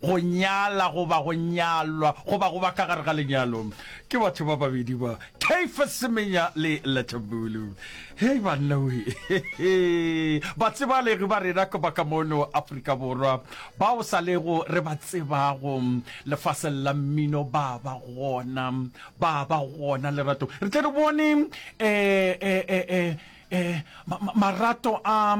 go nyala goba go nyalwa goba go ba ka gare ga lenyalo ke batho ba babedi ba Caiphas Semenya le Lethambulu. Hei banna we, batsebalegi ba rena ka baka mono Afrika Borwa bao sa lego re ba tsebago lefaseng la mmino ba ba gona, ba ba gona Lerato. Re tle re bone eh, eh, eh, eh, Eh, ma, ma, marato a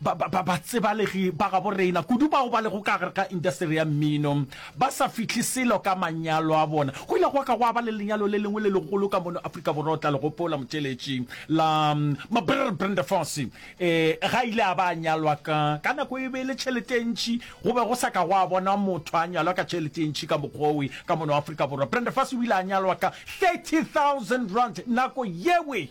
ba, ba, ba, batsebalegi ba gabo reina kudu bao ba lego ka gare ga industeri ya mmino ba sa fihle selo ka manyalo a bona go ile go ka go ba le lenyalo le lengwe le legolo ka mono Afrika Borwa o tla le gopola motšeletši la Mabrr Brendefosi eh ga ile a ba a nyalwa ka ka nako e be le tšhelete e ntšhi go be go sa ka go a bona motho a nyalwa ka tšhelete e ntšhi ka mokgowe ka mono Afrika Borwa Brendefosi o ile a nyalwa ka 30000 rand nako yewe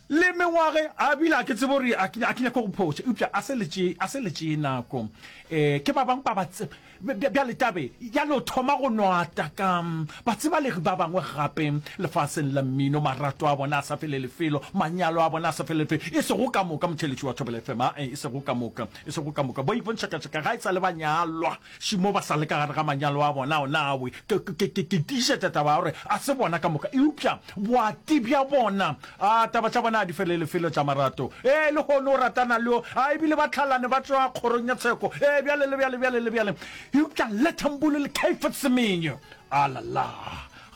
Le mengwage a bile a ke tsebe gore a ke a ke nyake go phoša, eupša a se le tše a se le tše nako. E, ke ba bangwe ba ba tse bjale tabe ya no thoma go nwata ka batsibalegi ba bangwe gape lefaseng la mmino, marato a bona a sa fele lefelo, manyalo a bona a sa fele lefelo, e sego ka moka motheeletši wa Thobela FM, a e sego ka moka, e sego ka moka, bo Ipon Shakashaka ga e sa le ba nyalwa. Šimo ba sa le ka gare ga manyalo a bona, ona a we. Ke, ke, ke, ke tiišetša taba ya gore a se bona ka moka, eupša boati bja bona, a, taba tša bona a di fele le felo tša marato. Ee, lehono o ratana le yo a, ebile ba tlhalane, ba tšwa kgorong ya tsheko, ee, bjale le bjale, bjale le bjale. Eupša lethambulu le kaifa tsemenyo. A la la!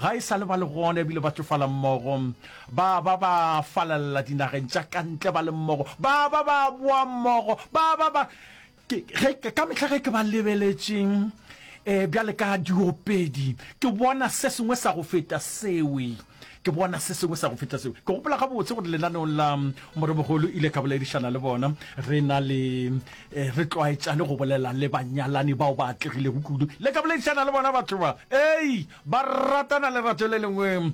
Ga e sa le ba le gona, ebile ba tšofala mmogo. Ba, ba, ba falelela dinageng tša ka ntle ba le mmogo. Ba ba, ba boa mmogo. Ba ba, ba. ka mehla ge ke ba lebeletšeng um eh, bjale ka diopedi ke bona se sengwe sa go feta sewe ke bona se sengwe sa go feta sewe ke gopola ga botse gore lenaneong la mm, moremogolo ile ka boledišana le bona re na le eh, re tlwaetšane go bolela le banyalani bao ba atlegilego kudu le ka boledišana le bona batho ba ei ba ratana lerato le lengwe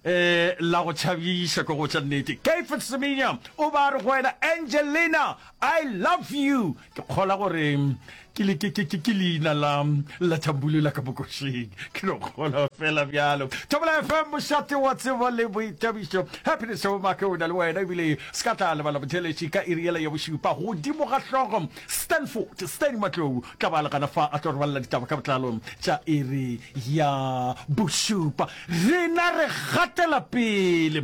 eh la go tšhabiša ko go tša nnete kafet semenya o ba re go wena angelina I love you ke kgola gore ke le ke ke ke ke leina la la thambulu la ka bokošeng ke no kgola fela bjalo thobela fm mošate wa tsebo le boitabišo happiness o make o na le wena ebile se ka tla lebala botheletši ka iri yela ya bošupa godimo ga hlogo stanford stan matlou tla ba legana fa a tlo re balela ditaba ka botlalo tša iri ya bošupa rena re gatela pele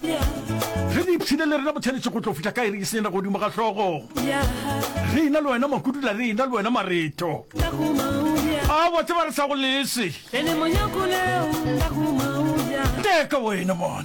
Re di ipshine le rena botshwanetše go tlo fihla ka iri e senyena godimo ga hlogo. Re ina le wena makudula, re ina le wena mareto. A wa tseba re sa go lese. Teka wena mona.